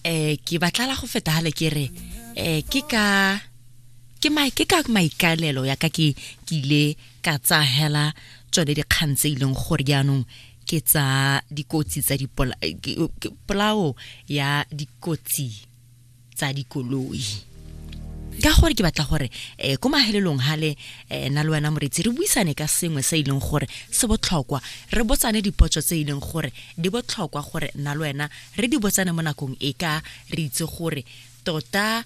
eh ke batlala go feta hale ke re eh ke ka ke mai ke ka maikalelo ya ka ke ke ile ka tsa hela tsone dikgang tse ileng gore jaanong ke tsa dikotsi tsa dipolao ya dikotsi tsa dikoloi ka gore ke batla gore um ko mahelelong gale um na le wena moretsi re buisane ka sengwe se e leng gore se botlhokwa re botsane dipotso tse e leng gore di botlhokwa gore na le wena re di botsane mo nakong e ka re itse gore tota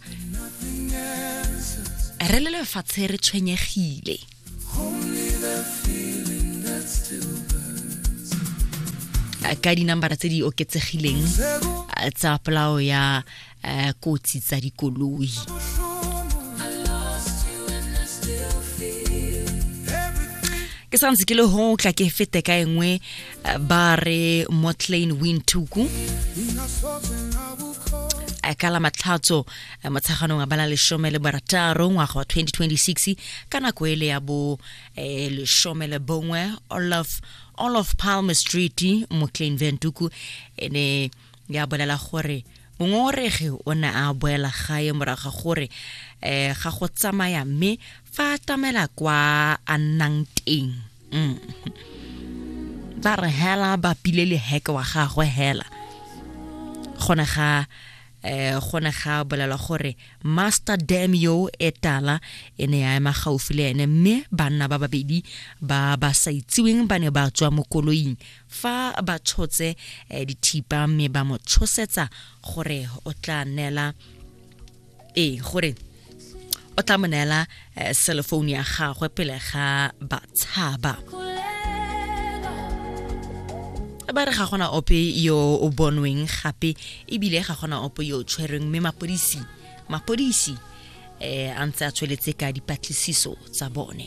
re le lefatshe re tshwenyegile ka dinambara tse di oketsegileng tsa polao ya eh, kotsi tsa dikoloi ke sa ntse ke le ho tla ke fete ka engwe eh, ba re motlane wintuku eh, ka la matlhatso Eh, motsheganong a bala leshome le barataro ngwaga wa 2026 ka nako ele ya bo eh, leshome le bongwe olaf olaf palmer street moclain ventuku e ne ya bolela gore mongongoregi o ne a boela gae morago ga gore um ga go tsamaya mme fa a tamela kwa a nnang teng mm. ba re hela ba pile le heke wa gagwe hela gone ga eh go ne ga bolelwa gore master dam yo e tala e ne ya ema gaufi le ene mme banna ba babedi ba ba sa itsiweng ba ne ba tswa mo koloing fa ba tshotse eh, dithipa mme ba mo tshosetsa gore o tla neela ee gore o tla mo neela eh, cellphone ya gagwe pele ga batshaba ba re ga gona ope yo o bonweng gape ebile ga gona ope yo o tshwereng mme mapodisi mapodisi um a ntse a tsweletse ka dipatlisiso tsa bone